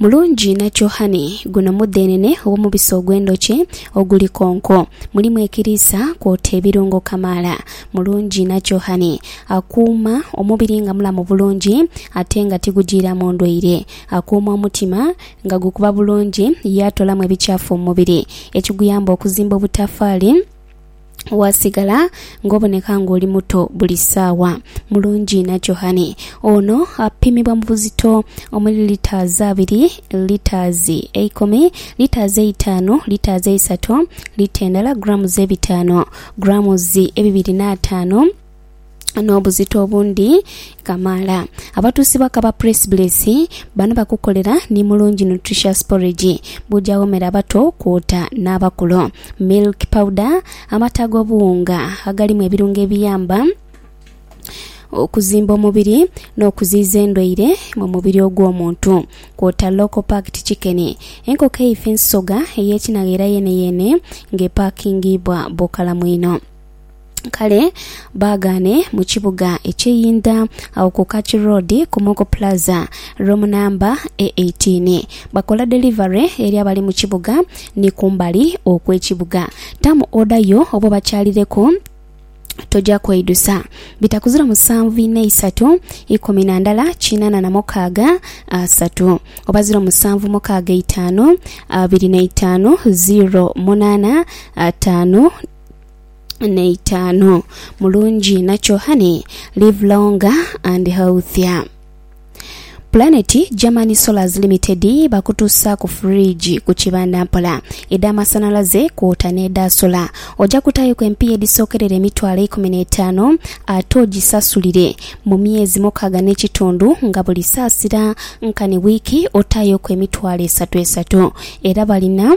Mulungi inha kyo honey. Guno mudhenene ow'omubisi ogw'endhoki oguli konko. Mulimu ekiriisa kwota ebirungo kamaala. Mulungi inha kyo honey. Akuuma omubiri nga mulamu bulungi ate nga tigujiiramu ndwaire. Akuuma omutima nga gukuba bulungi yaatolamu ebikyafu mu mubiri, ekiguyamba okuzimba obutafaali. Waasigala ng'oboneka ng'oli muto buli saawa. Mulungi na Johane ono apimibwa mu buzito omuli litres abiri, litres eikumi, litres eitaanu, litres eisatu, lita endala, grams ebitaanu, grams ebibiri n'ataanu, n'obuzito obundi kamaala. Abatuusi bakaba Press Bliss bano bakukolera ni mulungi nutritious porridge buja womera abato kwota n'abakulu. Milk powder, amata ag'obuwunga agalimu ebirungo ebiyamba okuzimba omubiri n'okuziiza endwaire mu mubiri ogw'omuntu kwota local packed chicken, enkoko eifa ensoga ey'ekinagha era yeeneyeene ng'epaakingibwa bukalamu inho. Kale baagaane mu kibuga eky'einda, agho ku Kaki Road, Komoko Plaza, room number e 18. Bakola delivery eri abali mu kibuga ni kumbali okw'ekibuga. Tamu order yo oba obakyalireku, toja kweidusa. Bitaku ziro musanvu inha isatu ikumi na ndala kinana na mukaaga asatu oba ziro musanvu mukaaga eitaanu abiri na itaanu ziro munana ataanu. n'eitaanu. Mulungi inha kyohani, live longer and healthier. Planet German Solars Limited bakutuusaaku fridge ku kibanda mpola, edh'amasanhalaze kwota n'edha sola. Oja kutaayoku empiiya edhisookerera emitwalo eikumi n'etaanu ate ogisasulire mu myezi mukaaga n'ekitundu nga buli saasira nkani wiiki otaayoku emitwalo esatu esatu. Era balina.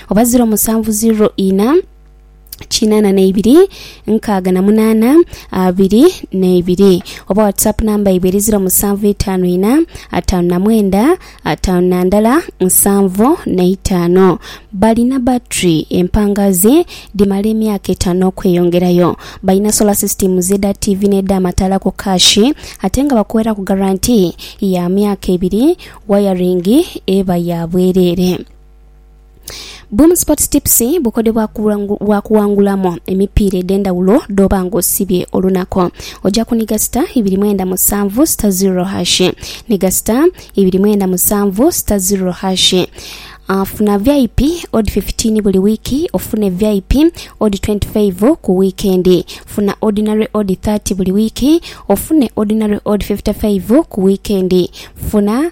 oba ziro musanvu ziro ina kinana neibiri nkaaga na munana abiri neibiri oba whatsapp namba yaibwe eri ziro musanvu itano ina atano na mwenda atano na ndala nsanvu neitano balina battery empangazi dhimala emyaka etano okweyongerayo balina solar system zeda TV neda amataala ku cash ate nga bakuweraku guarantee ya myaka ebiri wayaringi eba ya bwerere. Boom Sports Tips bukodyo bwa kuwangulamu emipiira edh'endhawulo dh'oba ng'osibye olunaku. Oja kuniga sita ibiri mwenda musanvu sita ziro hashi. Niga sita ibiri mwenda musanvu sita ziro hashi. Uh, funa VIP odd 15 buli wiiki ofune VIP odd 25 ku wiikendi. Funa ordinary odd 30 buli wiiki ofune ordinary odd 55 ku wiikendi. Funa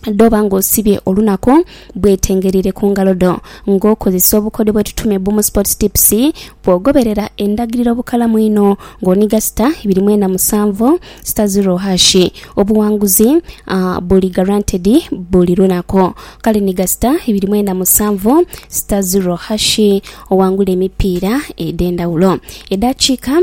dh'oba ng'osibye olunaku bwetengereire ku ngalo dho. Ng'okozesa obukodyo bwe tutume bbu mu Sports Tips, bw'ogoberera endagiriro obukalamu einho ng'oniga sita ibiri mwena musanvu sita ziro hashi, obuwanguzi buli guaranteed buli lunaku. Kale niga sita ibiri mwena musanvu sita ziro hashi owangule emipiira edh'endhawulo. Edaakiika.